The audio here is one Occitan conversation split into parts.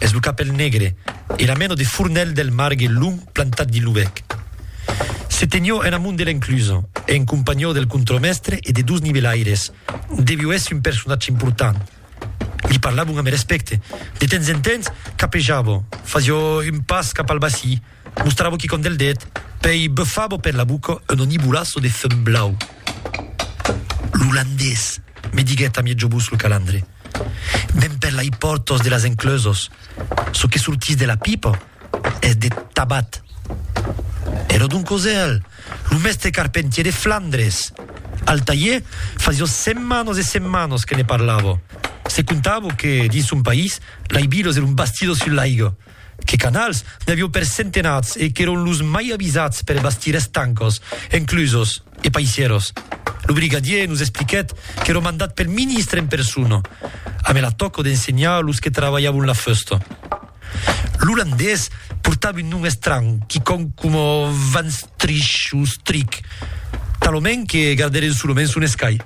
Es lo capèl negre e la mena de fornelh del margue long plantat dins lo bèc. Se tenió en amont de l'enclusa, en companhió del contremèstre e de dos nivelaires. Devió èsser un personatge important. Li parlavon amb respècte. De temps en temps, capejava, fasió un pas cap al bací, mostrava quicòm del dèt, pèi bufava per la boca un onibulaço de fum blau. L'olandés, me diguèt a mièg jobús lo calandre. Demper lai pòrtos de las encleusos, çò que sortís de la pipa es de tabat. Ero Don Cosèl, lo mèstre carpentier de Flandres. Al talhier fasió setmanas e setmanas que ne parlava. Se contava que, dins son país, lai vilos eron bastidos sus l'aiga. Que canals? N'i avió per centenats e qu'èron los mai avisats per bastir estancos, enclusos e paisieros. Lo brigadier nos expliquèt qu'èro mandat pel ministre en persona, amé la tòca d'ensenhar los que travalhavon la fusta. L'olandés portava un nom estranh, quicòm coma Van Strich o Strik, talament que gardèren solament son escai.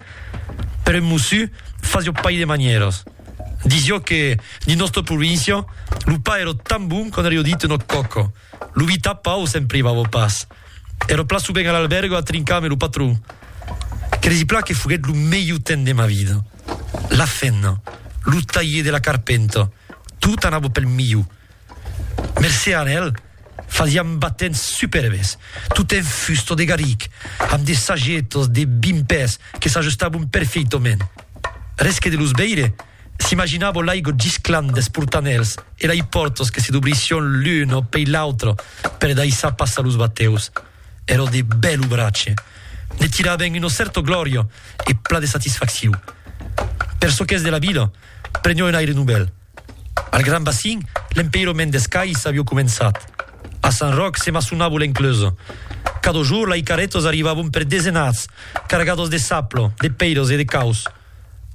Però en Mossu fasió pas de manièras. Disio que, dins nòsta província, lo pa èrò tan bon qu'an rio dit eno còco. Lo vi tapau se'n privavo pas. Èrò plan subent a l'albèrgo a trincar ame lo patron. Cresi plan que foguèt lo melhor temps de ma vida. La fenna, lo talhier de la carpenta, tot anavo pel milhor. Mercé a Anèl, fasiam batents superbes, tot en fusta de garric, amb de sagetas de vint pès que s'ajustabon perfeitament. Res que de los veire, s'imaginava l'aiga gisclant des portanèls e lei pòrtas que se dobrissión l'una pei l'autra per daissar passar los batèus. Èra de bèl obratge. Ne tiraven una cèrta glòria e plan de satisfacciu. Per çò qu'es de la vila, prenió un aire novèl. Al Gran Bacin, l'empeirament des cais avió començat. A Sant Ròc se maçonavo l'encleusa. Cada jorn lai carrètas arrivavon per desenats, cargadas de sapla, de pèiras e de caus.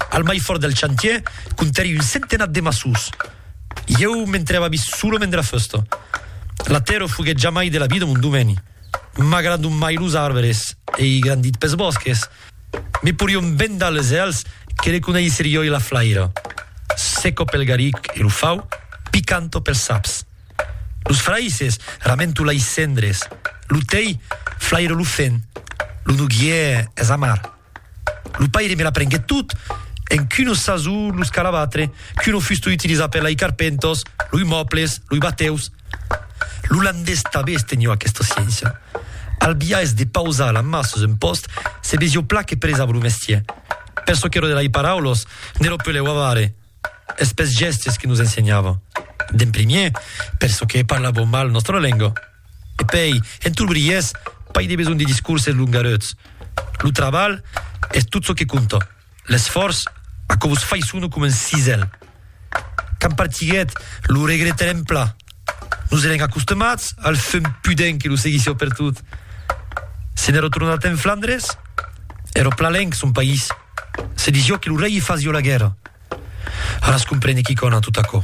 Al mai fòrt del chantièr comptèri un centenat de maçons. Ieu me'n trèva vis solament de la fèsta. La tèrra foguèt jamai de la vida mon domeni. M'agrandon mai los arbres, ei grandit pes bòsques. Me porion vendar les hèls que le coneisser joi la flaira. Seco pel garic e lo fau, picanto pels saps. Los fraisses, ramento lais cendres. Lo tei, flairo lo fen. Lo noguier es amar. Lo paire me l'aprenguèt tot, encunosas o los calabatre. Que lo fustu utilizat per lei carpentos, loi mòbles, loi batèus. L'olandés tabé estenheu aquesta sciéncia. Al biais de pausar la mà sus un pòst, se vesieu pla que presava lo mestier. Per çò qu'era de lei paraulos, ne lo pelèu avare. Es pes gèstes que nos ensenhava. D'en primier, per çò que parlavau mal nòstra lenga. E pei, en tot briés, pas de besonh de discourses longareuts. Lo trabalh es tot çò que compta. L'esfòrç aquò vos fai sono coma un cisèl. Quand partiguèt, lo regretarem plan. Nos èrem acostumats al fum pudent que lo seguissió pertot. Se n'èra tornat en Flandres, èra plan lenc son país. Se disió que lo rei i fasió la guèrra. Ara es comprene quicòna tot aquò.